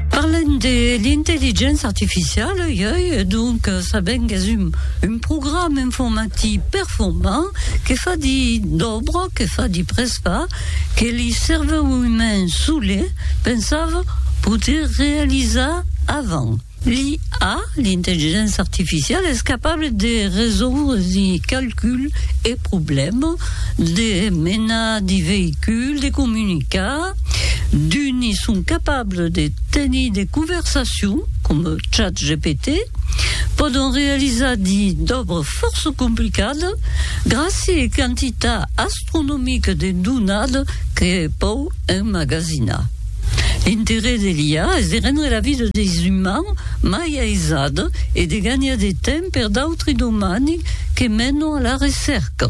Parlem de l'intelligéncia artificiala ieu e donc sabem qu'es un, un programa informatic performant que fa di d'òbra, que fa di presfar, que li cervèu umain solé pensava poder realizar avant. L'IA, l'intelligéncia artificiala, es capable de resoudre di calculs e problèmas, de menar di veïculs, de comunicar, d'uni son capables de tenir de conversacions, com ChatGPT, pòdon realizar di d'òbres fòrça complicadas gràcia e quantitat astronomica de donada que pòu emmagasinar. L'interès de l'IA es de rendre la vida deis umans mai aisada e de ganhar de temps per d'autres domani que menon a la recèrca.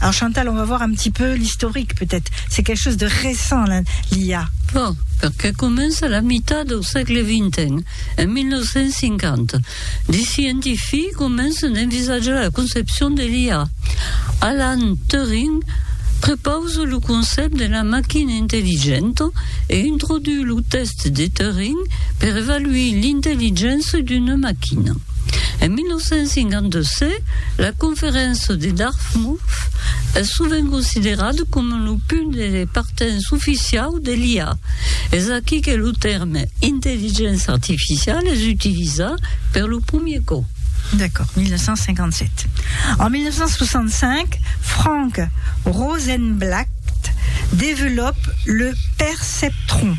Alors Chantal, on va voir un petit peu l'historique peut-être. C'est quelque chose de récent, l'IA. Bon, perquè comença a la mitat del sègle XX, en 1950. Des scientifics comencen a envisajar la concepcion de l'IA. Alan Turing prepausa lo concept de la machina intelligenta e introduit lo test de Turing per evaluir l'intelligença d'una machina. En 1952, la conferéncia de Dartmouth es sovent considerada coma lo punt de partença oficiau de l'IA. Es aquí que lo tèrme intelligéncia artificiala es utilizat per lo premier còp. D'accord, 1957. En 1965, Frank Rosenblatt développe le perceptron.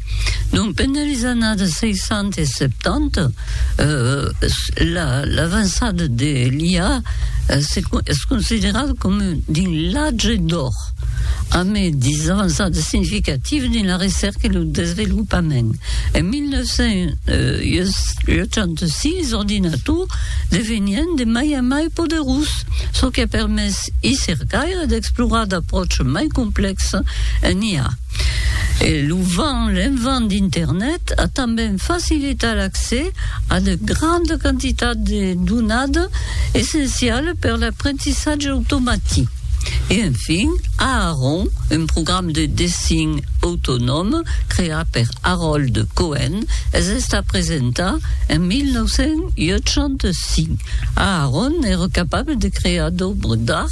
Donc, pendent les annadas 60 e 70, l'avançada de l'IA es considerada coma dins l'atge d'òr, amb de avançadas significativas dins la recèrca e lo desvelopament. En 1986, los ordinators devenien de mai a mai poderós, çò qu'a permés i cercaires d'explorar d'apròches mai complèxes en IA. E lo vent, l'envent d'Internet a tanben facilitat l'accès a de grandes quantitats de donades essenciales per l'aprentissatge automatic. E enfin, Aaron, un programa de dessin autonom creat per Harold Cohen, es estat presentat en 1985. Aaron èra capable de crear d'òbres d'art